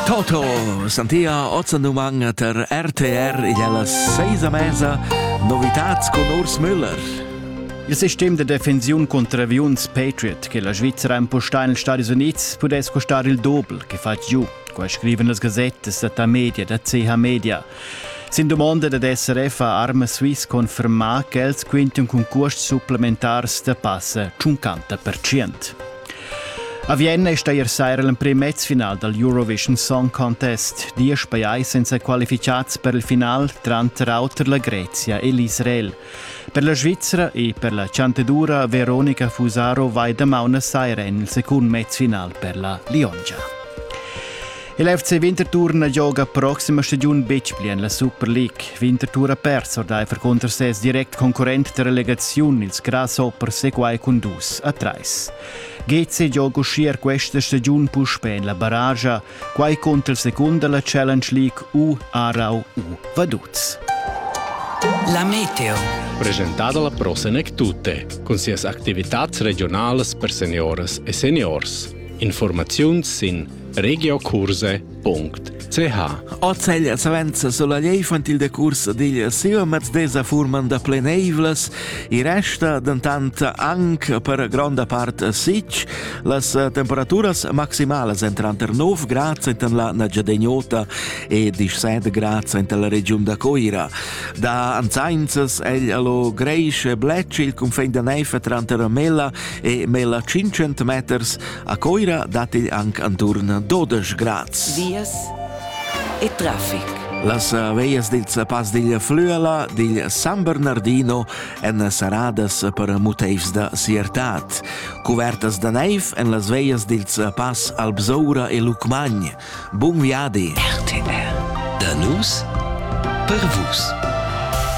Toto, Santia Ozzendumann ter RTR igl alla seisa mesa novitats con Urs Müller. Il sistem de defensiun contro aviuns Patriot che la Svizzera impostà negli Stati Uniti pudesse costare il doppel che fa giù, qua scrivono le gazzette da media da CH Media. Sin domanda da DSRF ha Arma Swiss confermà che els quinten con cost supplementars da passa 50%. A Vienna è steir saira l'emprim mezfinal dal Eurovision Song Contest. Diesch pajais sind qualificads per il final, tranter auter la Grezia e l'Israel. Per la Svizzera e per la Chantedoura Veronica Fusaro vai damaun a saira en il secund mezfinal per la Liongia. Il FC Winterthur gioga proxima stagiun betg pli en la Super League. Winterthur ha pers ordaifer cunter ses direct concurrent da relegaziun, ils Grasshoppers, e quai cun dus a trais. GC gioga uschia questa stagiun puspè en la barragia, quai cunter il secund da la Challenge League U Aarau U Vaduz. La Meteo. Presentata la prossima e tutte, con sias attività regionales per seniores e seniors. Informazioni sin regiokurse.ch Ozeglia savenza sulla infantil de cursa digl Sivamaz desa furman da pleneivlas, i resta dentant anche per gronda part sic, las temperaturas maximalas en tranter 9 grad enten la Nagyadegnota e 17 grad enten la regiun da Coira. Da anzainzas egl allo greisch e blec il confin de neifa tranter Mella e Mella 500 meters, A Coira dat igl anc anturn 12 grads. Vias e traffic. Las veias dil Pass digl Flüela, digl San Bernardino èn saradas per muteivs da siertad. Cuvertas da neiv en las veias dil Pass Albsoura e Lucmagn. Bun viadi! RTR. Da nus per vus.